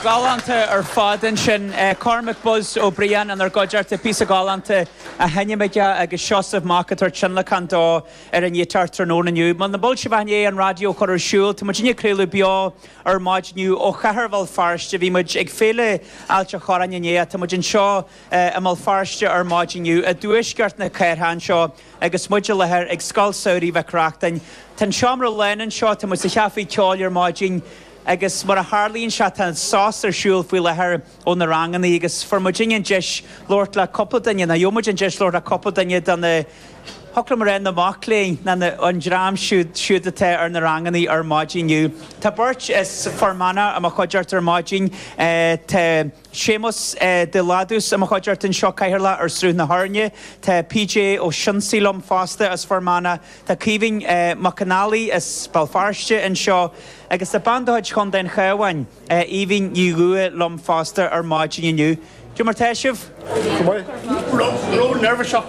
Galánta ar fad ansin. Cormac 'Buzz' Ó Briain inár gcuideachta le píosa galánta á sheinm aige agus Seosamh Mac ag tabhairt tionlacan dó ar an ngiotár tráthnóna inniu. Muna bhfuil sibh ach i ndiaidh an raidió a chur ar siúl. Tá muidinne ag craoladh beo ar maidin inniu ó chathair Bhéal Feirste. Bhí muid ag Féile Ailt an Chorráin inné ach tá muid anseo i mBéal Feirste ar maidin inniu i dtuaisceart na cathrach anseo. Agus muid i láthair ag Scoil Samhraidh Mhic Reachtain, tá an seomra lán anseo, tá muid sa chaifé ceoil ar maidin agus mar a tharlaíonn sé tá sos ar siúl faoi láthair ó na ranganna agus fuair muid an deis labhairt le cúpla duine, nó gheobhaidh muid an deis labhairt le cúpla duine de na, thig liom a rá na mac léinn, na, na, an dream siúd, siúd atá ar na ranganna ar maidin inniu, tá beirt as Fear Manach i mo chuideachta ar maidin, tá. Séamus de Léadús, i mo chuideachta anseo, Cathaoirleach ar Sruth na hÉirne. Tá PJ Ó Sionsaigh liom fosta, as Fir Manach. Tá Caoimhín Mac an Fhailí, as Béal Feirste, anseo. Agus tá bean de chuid Chontae an Chabháin, Aoibhín Ní Dhúiche, liom fosta ar maidin inniu. Cad é mar tá sibh. Ró-neirbhíseach.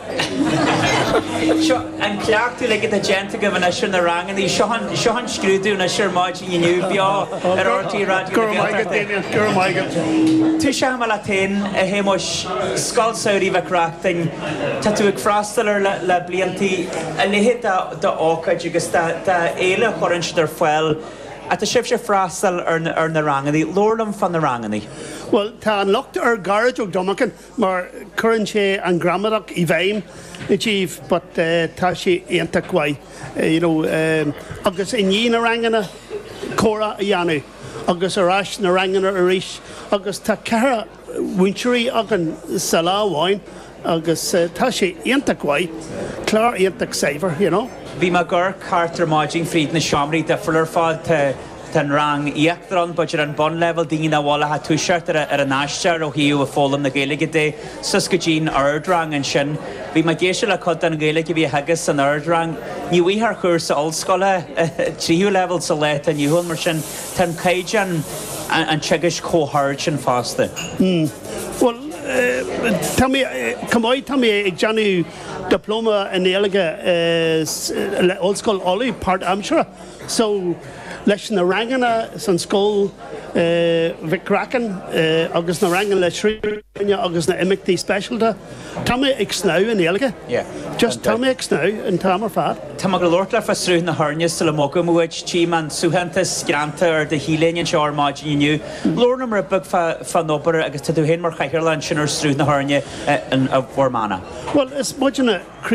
Seo an cleachtadh uilig atá déanta agaibh anois ar na ranganna. Seo an, seo an scrúdú anois ar maidin inniu, beo, ar RTÉ Raidió na Gaeltachta. Go raibh maith agat, Damien. Go raibh maith agat. Tosóidh mé leat féin, a Shéamuis, Scoil Samhraidh Mhic Reachtain. Tá tú ag freastal ar le, le blianta a leithéid de, de ócáid agus de, de fhéile a chuireann siad ar fáil. Ach tá sibhse ag freastal ar na, ar na ranganna. Labhair liom fá na ranganna. Bhuel, tá an locht ar Gearóid Ó Domagáin. mar cuireann sé an ghramadach i bhfeidhm i dtaobh but tá sé iontach mhaith you know agus i ndiaidh na ranganna comhrá a dhéanamh agus ar ais na ranganna arís agus tá ceithre mhúinteoirí againn sa lá amháin agus tá sé iontach mhaith, clár iontach saibhir you know. Bhí mé ag amharc thart ar maidin fríd na seomraí difriúla ar fad. Tá an rang íochtair ann, b'fhéidir an bunleibhéal do dhaoine nach bhfuil ach ag toiseacht ar ar a n-aistear ó thaobh foghlaim na Gaeilge de, suas go dtí'n Ard Rang ansin. Bhí mé ag éisteacht le cuid den Ghaeilge a bhí á theagasc san Ard Rang. Ní bhfaighfeá ar chúrsa ollscoile tríú leibhéal sa lá atá inniu ann mar sin tá an caighdeán an teagaisc chomh hard sin fosta. Bhuel, tá mé chomh maith, tá mé ag déanamh Dioplóma i nGaeilge le Ollscoil Uladh, páirtaimseartha. so leis na ranganna san Scoil Mhic Reachtain agus na ranganna le Sruth na hÉirne agus na imeachtaí speisialta tá mé ag snámh i nGaeilge yeah just tá mé ag snámh an t-am ar fad. Tá mé ag gabháil a labhairt leat fá Sruth na hÉirne sula mbogfaidh muid, tchím an suaitheantas greanta ar do T-léine anseo ar maidin inniu. Labhair liom rud beag fá fán obair agus tá tú féin mar chathaoirleach ansin ar Sruth na hÉirne i bhFear Manach. Bhuel is muidne